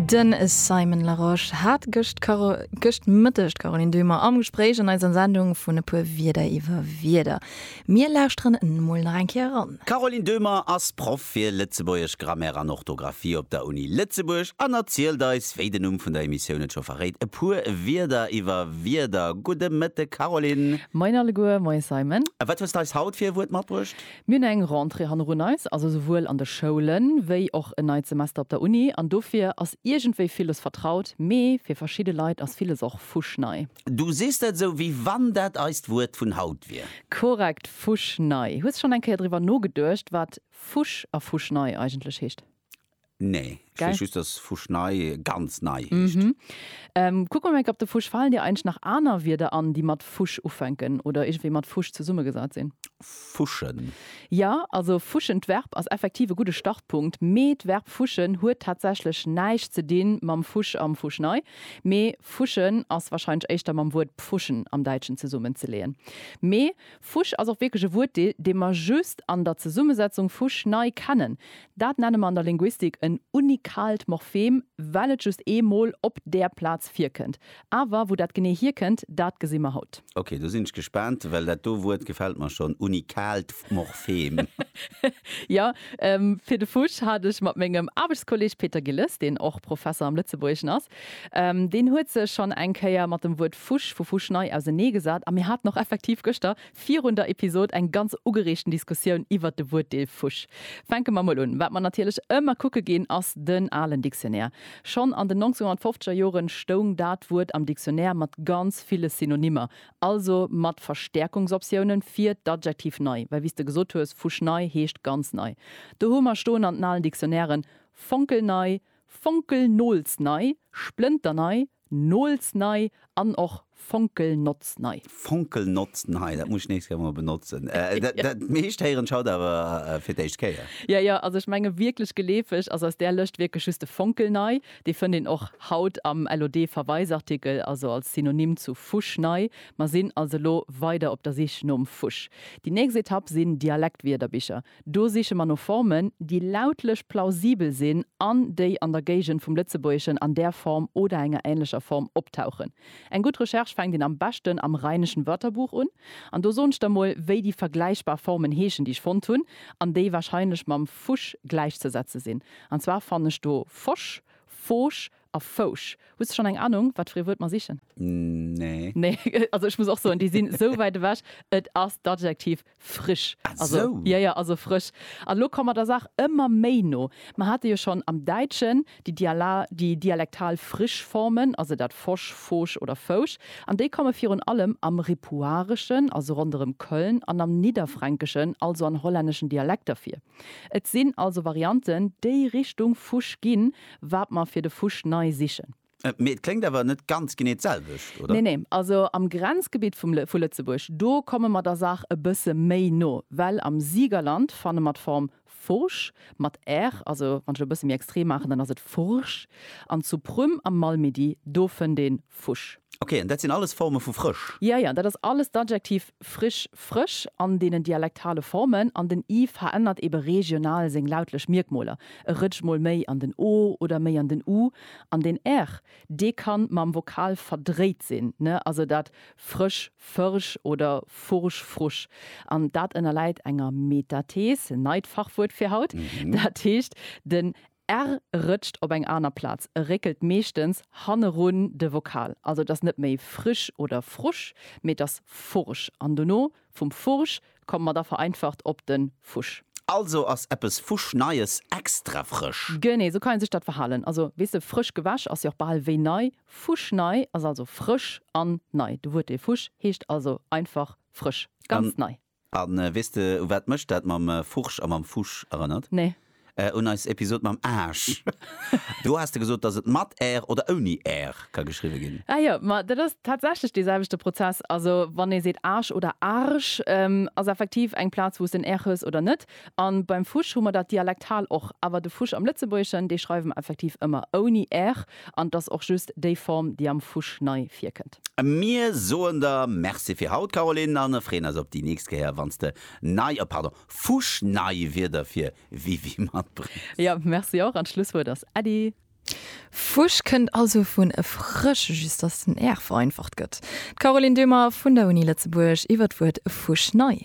De Simon Larosche hat gëscht Karo gëscht Mëtteg d'Caroline Döhmer am Gespréich an eiser Sendung vun E puer Wierder iwwer Wierder. Mir lauschteren emol nach eng Kéier eran. D'Caroline Döhmer ass Proff fir Lëtzebuergesch Grammaire an Orthografie op der Uni Lëtzebuerg an erzielt eis, wéi den Numm vun der Emissioun et scho verréit, e puer Wierder iwwer Wierder. Gudde Mëtteg, Caroline. Moien alleguer. Moien, Simon. A wat hues d'eis haut fir e Wuert matbruecht? Mir hunn eng Rentrée hannerun eis, also souwuel an de Schoulen, wéi och en neit Semester op der Uni. An dofir ass iergendwéi villes vertraut, mee fir verschidde Leit ass villes och fuschnei. Du sees dat esou, wéi wann dat eist Wuert vun haut wier. Korrekt, fuschnei. Hues de schonn eng Kéier driwwer nogeduecht, wat fusch a fuschnei eigentlech heescht? Nee, ech weess just, dass Fusch nei ganz nei heescht. Kucke mer eng Kéier op de Fusch. Falen dir eigentlech nach aner Wierder an, déi mat Fusch ufänken oder iergendwéi mat Fusch zesummegesat sinn? Fuschen. Jo, also fuschen, d'Verb, ass effektiv e gudde Startpunkt, mee d'Verb fuschen huet tatsächlech näischt ze di mam Fusch am Fusch nei, mee fuschen ass warscheinlech éischter mam Wuert pfuschen am Däitschen zesummenzeleeën. Mee Fusch ass och wierklech e Wuert, dee mer just an der Zesummesetzung fusch nei kennen. Dat nenne mer an der Linguistik en unikaalt Morphem, well et just ee Mol op där Plaz virkënnt. Awer wou dat genee hierkënnt, dat gesi mer haut. Ok, do sinn ech gespaant, well dat do Wuert gefält mer schonn, unikaalt Morphem. Jo, fir de Fusch hat ech mat mengem Aarbechtskolleeg Peter Gilles, deen och Professer am Lëtzebuergeschen ass, Deen huet sech schonn eng Kéier mat dem Wuert Fusch vu Fuschnei ausenee gesat a mir haten och effektiv gëschter virun der Episod eng ganz ugereegten Diskussioun iwwert de Wuertdeel Fusch. Fänke mer mol un. Wat mer natierlech ëmmer kucke ginn, ass den alen Dictionnaire. Schonn an den 1950er Jore stoung dat Wuert am Dictionnaire mat ganz ville Synonymmer, also mat Verstäerkungsoptioune fir d'Adjektiv nei, well wéi s de gesot hues, Fuschnei heescht ganz nei. Do hu mer stoen an den alen Dictionnairen fonkelnei, Fonkelnoolsnei, splënternei, noolsnei an och fonkelnotznei. Fonkelnotznei, dat muss ech nächst Kéier mol benotzen. Dat meescht héieren ech haut awer fir d'éischt Kéier. Jo, jo, also ech menge wierklech geleefeg ass aus där Lëscht wierklech just de Fonkelnei. Dee fënnt een och haut am LOD-Verweisartikel, also als Synonym zu Fuschnei. Mer sinn also elo weider op der Sich nom Fusch. Déi nächst Etapp sinn Dialektwierderbicher. Do siche mer no Formen, déi lautlech plausibel sinn an déi an der Géigend vum Lëtzebuergeschen an där Form oder enger änlecher Form optauchen. Eng gutt Recherche fänkt een am beschten am Rheinischen Wörterbuch un. An do soen ech der mol, wéi déi vergläichbar Formen heeschen, déi ech fonnt hunn an déi warscheinlech mam Fusch gläichzesetze sinn. An zwar fann ech do Fosch, Foosch, a Fousch. Hues de schon eng Anung wat fir ee Wuert mer sichen? Nee. Nee, also ech muss och soen déi sinn esou wäit ewech. Et ass d'Adjektiv frisch. Ah Also sou. jo, jo, also frësch. An elo komme mer der Saach ëmmer méi no. Mer hate jo schon am Däitschen déi Diala, déi dialektal frisch Formen, also dat fosch, foosch oder fousch. An déi komme virun allem am Ripuareschen, also ronderëm Köln, an am Nidderfränkeschen, also an hollänneschen Dialekter vir. Et sinn also Varianten, déi Richtung Fusch ginn, wat mer fir de Fusch nei sichen. Mee et kléngt awer net ganz genee d'selwecht, oder? Nee, nee. Also am Grenzgebitt vum, vu Lëtzebuerg, do komme mer der Saach e bësse méi no, well am Siegerland fanne mer d'Form Fursch, mat r, also wann ech et e bësse méi extrem maachen, dann ass et Fursch, an zu Prüm am Malmedy, do fënnt ee Fusch. Ok, an dat sinn alles Forme vu frësch? Jo, jo, dat ass alles d'Adjektiv frisch, frësch, an deenen dialektale Formen. An den i verännert eebe regional seng lautlech Mierkmoler, e rëtscht mol méi an den o oder méi an den u. An den r, dee kann mam Vokal verdréit sinn, ne, also dat frësch, fërsch oder fursch, frusch. An dat ënnerläit enger Metathees, neit Fachwuert fir haut, dat heescht, den R rëtscht op eng aner Plaz, e réckelt meeschtens hannerun de Vokal. Also et ass net méi frisch oder frusch, mee et ass fursch an dono vum fursch komme mer da vereinfacht op den fusch. Also ass eppes fuschneies extra frësch. Genee sou kann ee sech dat verhalen. Also weess de, frësch gewäsch ass jo och bal wéi nei. Fuschnei ass also frësch an nei. De Wuertdeel fusch heescht also einfach frësch, ganz nei. A weess de, u wat mech dat mam Furch a mam Fusch erënnert? Nee. Un eis Episod mam Aarsch. Do has de gesot, dass et mat r oder ouni r ka geschriwwe ginn. Ah jo, ma dat ass tatsächlech dee selwechte Prozess. Also wann ee seet Aarsch oder Arsch, ass effektiv eng Plaz, wou s de en r hues oder net. A beim Fusch hu mer dat dialektal och. Awer de Fusch am Lëtzebuergeschen, dee schreiwe mer effektiv ëmmer ouni r an et ass och just déi Form, déi am Fusch nei virkënnt. Mir soen der Merci fir haut, Caroline, a freeën eis op déi nächst Kéier, wann s de nei, oh pardon, fuschnei Wierder fir WiWi matbréngs. Jo, Merci och. An d'Schlusswuert ass Äddi. Fusch kënnt also vun frësch, just datt den r vereinfacht gëtt. D'Caroline Döhmer vun der Uni Lëtzebuerg iwwer d'Wuert fuschnei.